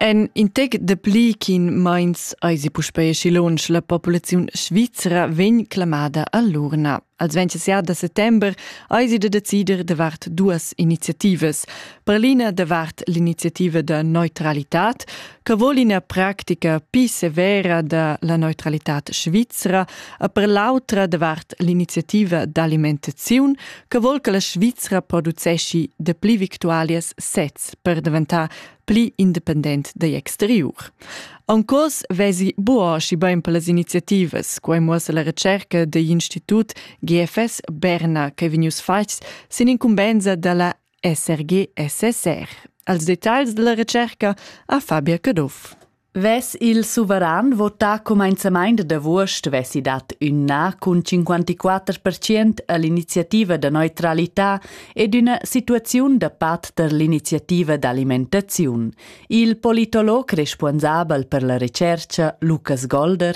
En in tec dapli ch'in meins eisi puspei aschi lunsch la populaziun svizra vegn clamada all'urna. Als 27 da settember eisi da decider davart duas iniziativas. Per l'ina davart l'iniziativa da neutralitad, che voli ina practica pi severa da la neutralitad svizra e per l'autra davart l'iniziativa d'alimentaziun che vol che la Svizra producesci de pli victualias sez per daventar pli independent dagl exteriur. En cos vesi buoschi bein per las iniziativas, quei muossa la recerca degl Institut GFS Berna che vegnius fatgs sin incumbensa dalla esser gie e seser. Als detagls della recerca ha Fabia Caduff. Ves il suveran votà comenzamaint da vuost vesi dat üna cun 54% all'iniziativa da neutralità ed üna situaziun da pat per l'iniziativa d'alimentaziun. Il politolog responsabel per la recerca Lukas Golder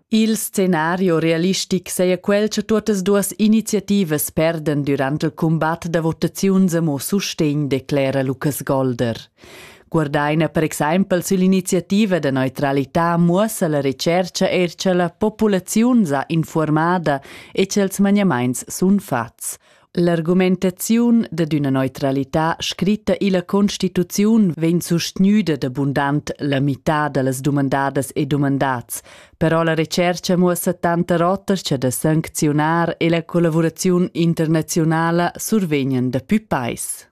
Il scenario realistic saja quel cha tuottas duos iniziativas perdan durant il cumbat da votaziuns amo sustegn, declera Lukas Golder. Guardaina per exaimpel süll'iniziativa da neutralità muossa la retschercha eir cha la populaziun s'ha informada e cha'ls maniamaints sun fats. L'argumentaziun dad üna neutralità scritta illa Constituziun vegn sustgnüda da bundant la mità da las dumandadas e dumandats, però la retschercha muossa tanta rotas cha da sancziunar e la collavuraziun internaziunala survegnan dapü peis.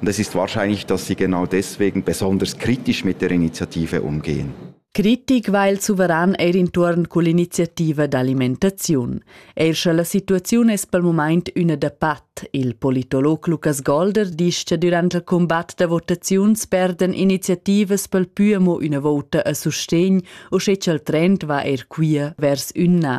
Und es ist wahrscheinlich, dass sie genau deswegen besonders kritisch mit der Initiative umgehen. Kritik va il suveran eir intuorn cull'iniziativa d'alimentaziun. Eir sche la situaziun es pel mumaint üna da pat, il politolog Lukas Golder disch che durant il combatt da votaziuns perden iniziativas pel pü amo üna vouta a sustegn, o sche cha'l trend va eir quia vers ün na.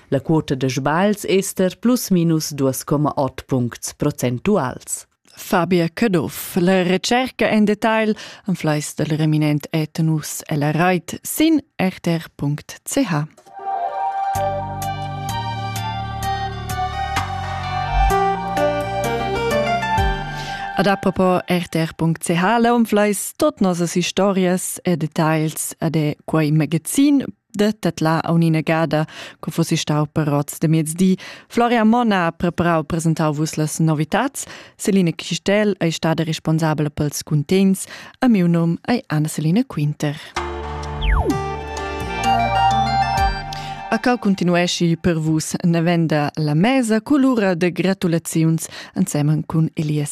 La quota da sbagls ester plus minus 2,8 puncts procentuals. Fabia Caduff. La recerca en detail en fleis del reminent etenus e la rait sin rtr.ch. Ad apropos rtr.ch la umfleis tot nossas historias e details ad e quei magazin de tetla aunina gada, co fossi stau per rots de mezdi. Floria Monna ha preparau presentau vus las novitats. Celine Chistel ei stada responsabla pels cuntents. A miu nom ei Anna Celine Quinter. A cau continuesci per vus navenda la mesa colura de gratulaziuns ensemen cun Elias